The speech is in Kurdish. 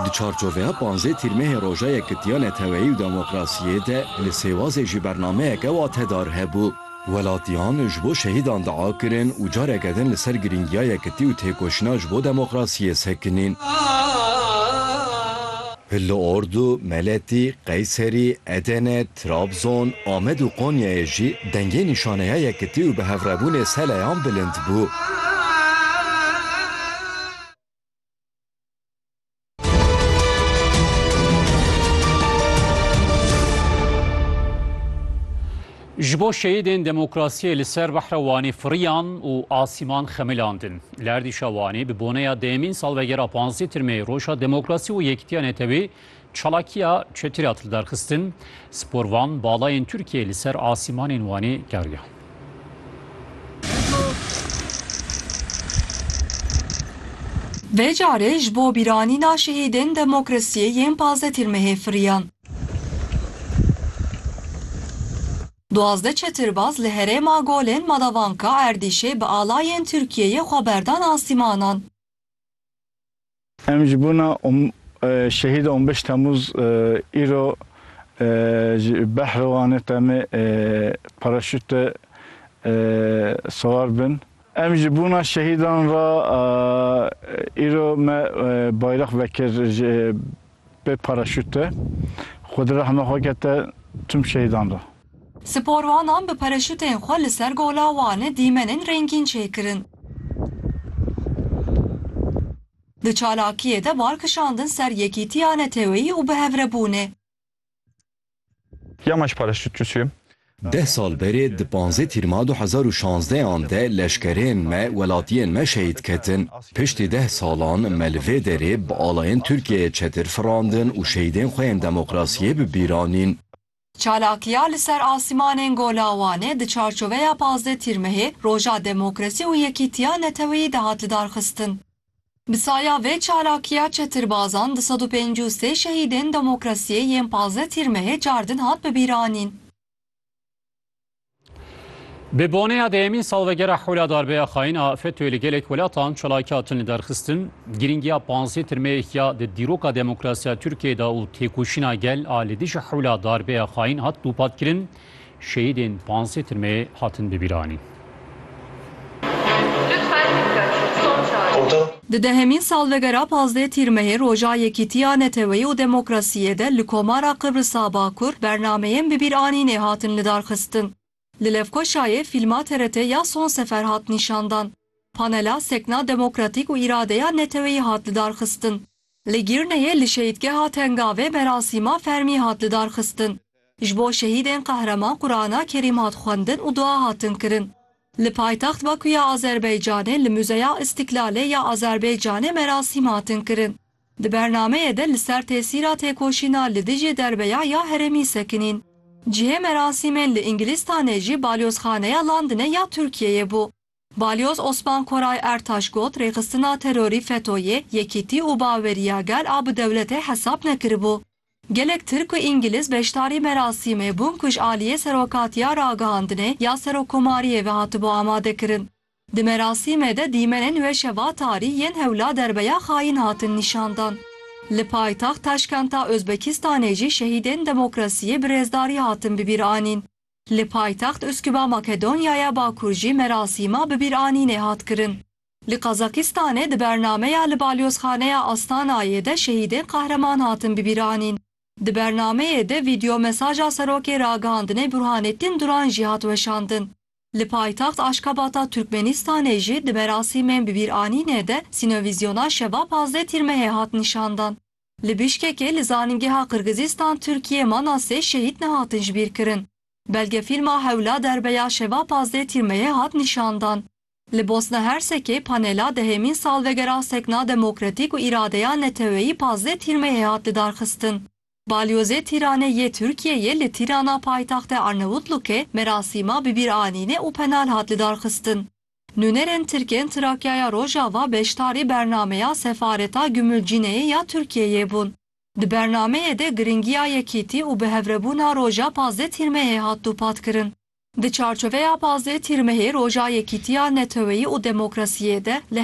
Di çarçoveya panzdeh Tîrmehê Roja Yekitiya Neteweyî û Demokrasiyê de li Sêwazê jî bernameyeke watedar hebû. Welatiyan ji bo şehîdan dua kirin û careke din li ser girîngiya yekitî û têkoşîna ji bo demokrasiyê sekinîn. Pil li Ordu, Meletî, Qeyserî, Edene, Trabzon, Amed û Konyayê jî dengê nîşaneya yekitî û bihevrebûnê seleyan bilind bû. Ji bo şehîdên demokrasiyê li ser behra Wanê firiyan û asîman xemilandin. Li erdîşa Wanê bi boneya dêyemîn salvegera panzdeh tir meyê Roja Demokrasî û Yekitiya Netewê çalakiya çetir hat lidarxistin. Sporvan balayên Tirkiyeyê li ser asîmanên Wanê keriyan. Vê carê ji bo bîranîna şehîdên demokrasiyê yên panzdeh tir meyê firiyan. Duwazdeh çetirbaz li herêma Golên Madavanka Erdîşê bi alayên Tirkiyeyê xwe berdan asîmanan. Em ji bûna Şehîd on beş Temûz îro ji Behrewanê temê paraşûte siwar bin. Em ji bûna şehîdan re îro me bayrex vekir ji Bê paraşût de xwe di rehma xwe kete tim şehîdan re. Sporwanan bi paraşûtên xwe li ser Gola Wanê dîmenên rengîn çêkirin. Di çalakiyê de bar kişandin ser yekîtiya neteweyî û bihevrebûnê. Ya ma ji paraşût çûçûye. Deh sal berê di panzdeh Tîrma du hezar û şazdeh an de leşkerên me, welatiyên me şehîd ketin. Piştî deh salan me li vê derê bi alayên Tirkiyeyê çetir firandin û şehîdên xwe yên demokrasiyê bi bîr anîn. Çalakiya li ser asîmanên Gola Wanê di çarçoveya panzdeh Tîrmehê, Roja Demokrasî û Yekîtiya Neteweyî de hat lidarxistin. Bi saya vê çalakiya çetirbazan du sed û pêncî û sê şehîdên demokrasiyê yên pazdeh Tîrmehê cardin hat bibîranîn. Bi boneya dehemîn salvegera Hewla Darbeya Xayin a FETÖ'yê li gelek welatan çalakî hatin li derxistin, girîngiya panzdeh Tîrmehê ya di dîroka demokrasiya Tirkiyeyê de û têkoşîna gel a li dijî Hewla Darbeya Xayin hat dûpatkirin. Şehîdên pansê timê hatin bibîranîn. Di dehemîn salvegera pazdeh Tîrmehê Roja Yekîtiya Neteweyî û Demokrasiyê de li Komara Qibrisa Bakur bernameyên bibîranînê hatin lidarxistin. Li Lefkoşayê fîlma TRT ya Son Sefer hat nîşandan. Panela Sekna Demokratîk û Îradeya Neteweyî hat lidarxistin. Li Gîrneyê li Şehîdgeha Tengavê merasîma fermî hat lidarxistin. Ji bo şehîdên qehreman Qurana Kerîm hat xwendin û dua hatin kirin. Li paytext Bakû ya Azerbaycanê li Muzeya Îstîklalê ya Azerbaycanê merasîm hatin kirin. Di bernameyê de li ser tesîra têkoşîna li dijî derbeya ya herêmî sekinîn. Cihê merasîmên li Îngilîstanê jî Balyozxaneya Landine ya Tirkiyeyê bû. Balyoz Osman Koray Ertaş got, Rêxistina terorî FETÖ'yê yekîtî û baweriya gel a bi dewletê hesab nekiribû. Gelek Tirk û Îngiliz beşdarî merasîmê bûn ku ji aliyê Serokatiya Ragihandinê ya Serokkomariyê ve hatibû amadekirin. Di merasîmê de dîmenên weşe Vatarî yên hewla derbeya xayîn hatin nîşandan. Li paytext Taşkenta Ozbekistanê jî şehîdên demokrasiyê bi rêzdarî hatin bibîranîn. Li paytext Uskuba Makedonyaya Bakur jî merasîma bibîranînê hat kirin. Li Qazakistanê di bernameya li Balyozxaneya Astanayê de şehîdên qahreman hatin bibîranîn. Di bernameyê de vîdeomesaja Serokê Ragihandinê Burhanettin Duran jî hat weşandin. Li paytext Aşkabata Turkmenistanê jî di merasîmên bibîranînê de sînovîzyona şeva pazdeh Tîrmehê hat nîşandan. Li Bîşkekê li Zanîngeha Qirgizîstan Tirkiyê mala sê şehîd nehatin jibîrkirin. Belgefîlma Hewla Derbe ya Şeva Pazdeh Tîrmeyê hat nîşandan. Li Bosna Hersekê panela dehêmîn salvegera sekna demokratîk û îradeya neteweyî pazdeh Tîrmeyê hat lidarxistin. Balyozê Tîranê yê Tirkiyeyê li Tîrana paytexte Arnavutluke merasîma bibîranînê û penal hat lidarxistin. Nûnerên Tirk ên Trakyaya Rojava beşdarî bernameya Sefareta Gümülcine'yê ya Tirkiyeyê bûn. Di bernameyê de girîngiya yekîtî û bihevrebûna roja pazdeh Tîrmehê hat dûpatkirin. Di çarçoveya pazdeh Tîrmehê roja yekîtiya neteweyî û demokrasiyê de li